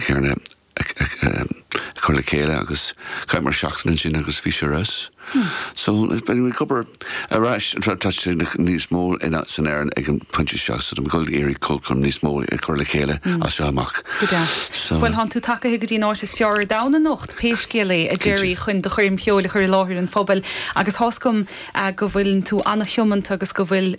Iad a chur le chéile agus chaith muid seachtain ansin agus bhí sé ar fheabhas. So bheidh mé ag obair ar ais atá tuiscint níos mó san aer ag an pointe seo so táim ag dul ag iarraidh ceolchoirm níos mó a chur le chéile as seo amach. Go deas. So. Bhuel tánn tú tagaithe go dtí an áit is fearr ar domhan anocht, pé scéal é, a Gerry, chun do choirm cheoil a chur i láthair an phobail agus tá's agam go bhfuil tú an-tiomanta agus go bhfuil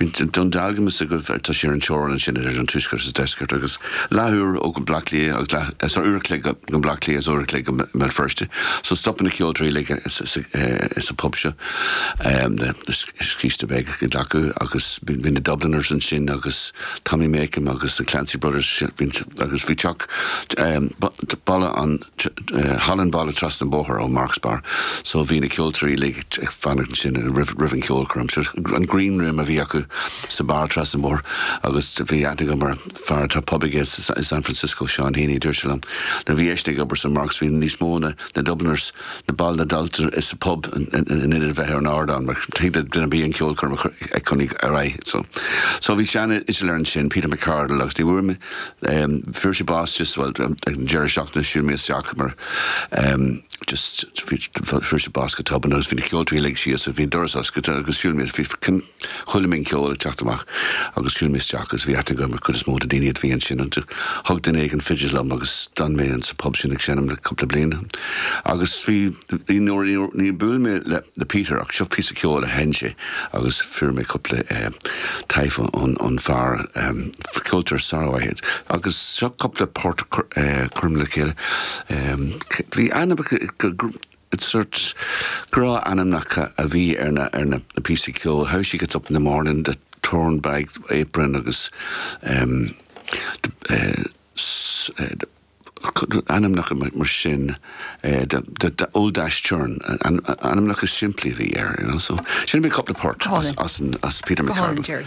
i nDún Dealgan tá's agaibh tá sé ar an teorainn sin idir an tuaisceart is deisceart agus leath uair ó go Bleá Cliath agus leath is uair a chloig go go Bleá Cliath is uair a chloig go mBéal Feirste. So stopann na ceoltóirí uilig sa pub seo le scíste a bheith acu agus bhí na Dubliners ansin agus Tommy Makem agus na Clancy Brothers agus bhí teach balla an halla an bhaile trasna an bhóthair ó Marks Bar so bhí na ceoltóirí uilig ag fanacht ansin roimh an cheolchoirm. An Green Room a bhí acu sa bar trasna an bhóthair agus bhí aithne agam ar fear atá pub aige i San Francisco, Seán Heaney, dúirt sé liom nuair a bhí eisean ag obair sa Marks bhí níos mó na Dubliners, na baill den Dáil sa pub in ionad a bheith ar an ardán mar thig le duine ar bith an cheolchoirm a chur ag conaí ar aghaidh. So bhí sean fhidléir ansin, Peter McCardle agus ní bhfuair mé. Fuair sé bás just, bhuel, ag an deireadh seachtaine, shiúil mé isteach mar just, bhí, fuair sé bás go tobann agus bhí na ceoltóirí uilig síos agus bhí an doras oscailte agus shiúil mé, bhí, chuala mé an ceol ag teacht amach agus shiúil mé isteach agus bhí aithne agam ar chuid is mó de na daoine a bhí ansin agus thug duine éigin fidil dom agus d'fhan mé sa pub sin ag seinm le cúpla bliain agus bhí Níor bhuail mé le Peter ach seo píosa ceoil a sheinn sé agus fuair mé cúpla taifead ón fear, ceoltóir sármhaith é, agus seo cúpla port curtha le chéile. Bhí ainm, is grá liom ainmneacha a bhí ar na píosaí ceoil, How She Gets Up In The Morning, The Torn Bag Apron agus. Ainmneacha mar sin The Old Dash Churn, ainmneacha simplí a bhí air you know, so sin cúpla port ó Peter McArdle.